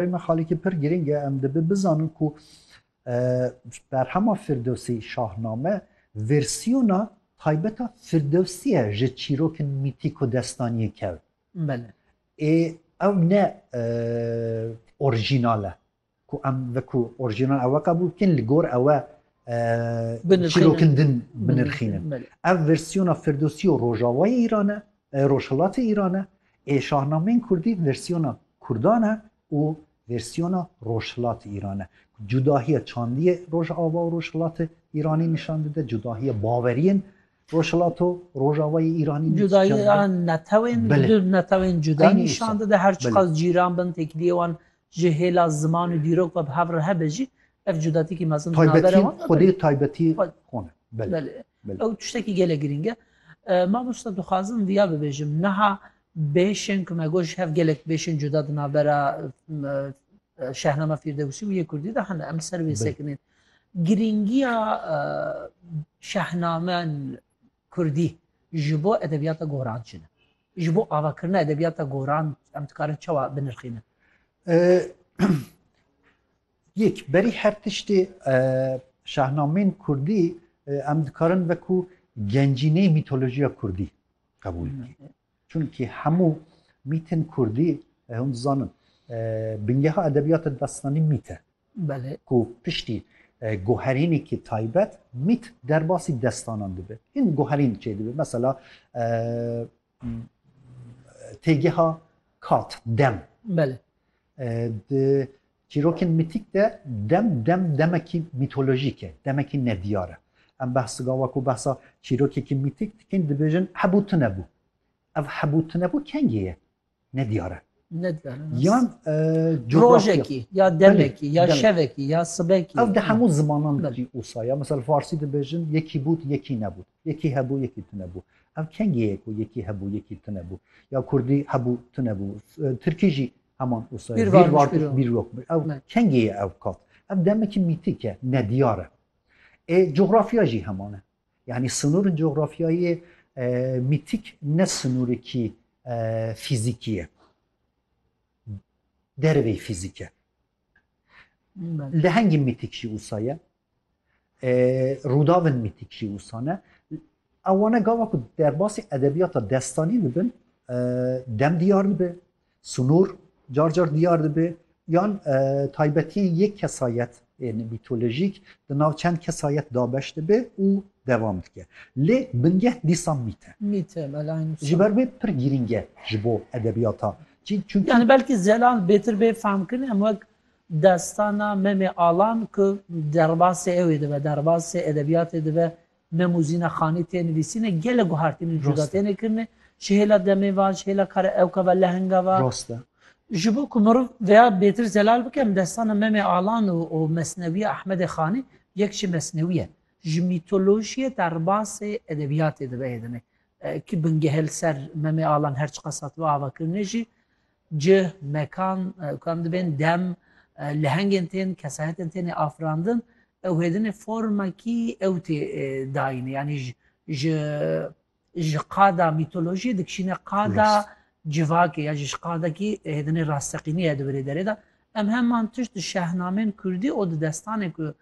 Pey me xalîkî pir girîng e, em dibi bizanin ku Berhema Firdewsî Şahname versiyona taybeta Firdewsî ye ji çîrokên mîtîk û destaniyên kewt. Belê. Ê ew ne orîjînal e. Ku em veku orîjînal ewe qebûl bikin li gor ewe çîrokên din binirxînin. Ev versiyona Firdewsî û Rojavayê Îran e. Rojhilatê Îran e, ê şahnameyên kurdî versiyona kurdan e û versiyona rojhilatê Îran e. Cudahiya çandiyê rojava û rojhilatê Îranî nîşan dide, cudahiya baweriyên rojhilat û rojavayê Îranî nîşan dide. Cudahiya netewên, du netewên cuda nîşan dide, her çiqas cîran bin, têkiliyê wan ji hêla ziman û dîrok ve bi hev re hebe jî, ev cudatîkî mezin di navbera wan de bû. Taybetiyên xwedê taybetî xwe ne. Belê. Ew tiştekî gelek girîng e. Mamosta dixwazim viya bibêjim niha bêşên ku me got ji hev gelek bêşên cuda di navbera şehnama Fîrdewsî û yê Kurdî de hene em ser wê sekinên. Girîngiya şehnamen Kurdî ji bo edebiyata goran çi ne? Ji bo avakirina edebiyata goran em dikarin çawa binirxînin? Yek, berî her tiştê şahnameyên kurdî em dikarin wekû gencîneyê mîtolojiya kurdî qebûl bikin. Çunkî hemû mîtên kurdî hûn dizanin bingeha edebiyata destanî mît e. Belê. Ku piştî goherînekî taybet mît derbasî destanan dibe. Hîn goherîn çê dibe. Mesela têgeha kat, dem. Belê. Di Çîrokên mîtîk de dem dem demekî mîtolojîk e, demekî nediyar e. Em behs gawa ku behsa çîrokekî mîtîk dikin dibêjin hebû tunebû. Ev hebû tunebû kengê ye? Nediyar e. Nediyar e. Yan coğrafya. Rojekî ya demekî ya şevekî ya sibekî. Ev di hemû zimanan de jî wisa ye. Misal farsî dibêjin yekî bûd yekî nebûd. Yekî hebû yekî tune bû. Ev kengî ye ku yekî hebû yekî tune bû. Ya kurdî hebû tune bû. Tirkî jî heman wisa ye. Bîr varmiş bîr rokmiş. Ew kengî ye ew kat. Ev demekî mîtîk e, nediyar e. Ê cografya jî heman e. Yanî sinûrên cografyayê mîtîk ne sinûrekî fîzîkî ye. Derveyî fîzîk e. Lehengî mîtîk jî wisa ye. Rûdavên mîtîk jî wisa ne. Ew wane gava ku derbasî edebiyata destanî dibin dem diyar dibe, sunûr car car diyar dibe yan taybetiyên yê kesayet ên mîtolojîk di nav çend kesayet da beş dibe û devam dike. Lê bingeh dîsan mît e. Mît e belay nûsan. Ji ber wê pir girîng e ji bo edebiyata. Çi çunki. Yani belkî zelal bêtir bê fehmkirin em wek Destana Memê Alan ku derbasê ew ê dibe, derbasê edebiyatê dibe, Mem û Zîna Xanî tê nivîsîn e, gelek guhartîn û cuda têne kirin e, ji hêla demê ve, ji hêla kara ewka ve, lehenga ve. Rast e. Ji bo ku mirov vêya bêtir zelal bike, em destana Memê Alan û mesnewiya Ehmedê Xanî, yek jî mesnewî ye, ji mîtolojiyê derbasê edebiyatê dibe hêdine. Ki bingehe li ser Memê Alan her çiqas hatibe avakirinê jî, Cih, mekan û kan dibên dem, lehengên tên, kesayetên têne afirandin, ew hêdinê formekî ew tê dayîne. Yanî ji ji qada mîtolojiyê dikişîne qada civakê ya ji qadekî hêdinê rasteqînî ye di virê derê de. Em heman tişt di şehnamên kurdî û di destanê ku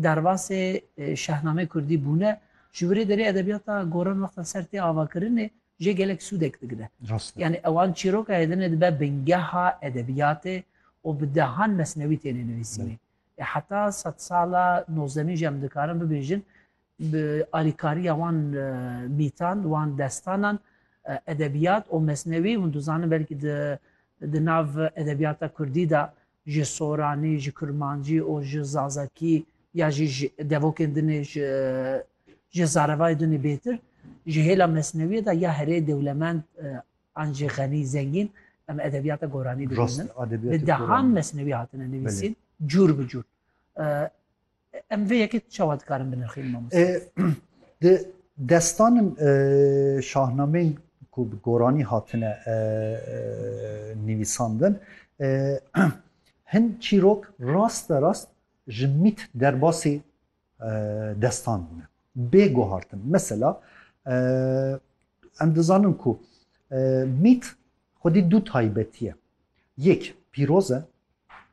derbasê şehnameyê kurdî bûne, ji virê derê edebiyata goran wexta ser tê avakirinê jê gelek sûdek digire. Yanî ewan çîroka Êdinê dibe bingeha edebiyatê û bi dehan mesnewî têne nivîsîne. Ê heta sed sala nozdemîn jî em dikarin bibêjin bi alîkariya wan mîtan, wan destanan edebiyat û mesnewî hûn dizanin belkî di di nav edebiyata kurdî de ji soranî, ji kurmancî û ji zazakî ya jî ji devokên din ê ji ji zarevayê din ê bêtir, ji hêla mesnewiyê de ya herê dewlemend an jî xenî, zengîn em edebiyata goranî dibînin. Bi dehan mesnewî hatine nivîsîn cûr bi cûr. Em vê yekê çawa dikarin binirxîn mamoste? Di destanin şahnameyên ku bi goranî hatine nivîsandin hin çîrok rast be rast ji mît derbasî destan bûne. Bê guhartin. Mesela em dizanin ku mît xwedî du taybetî ye. Yek pîroz e,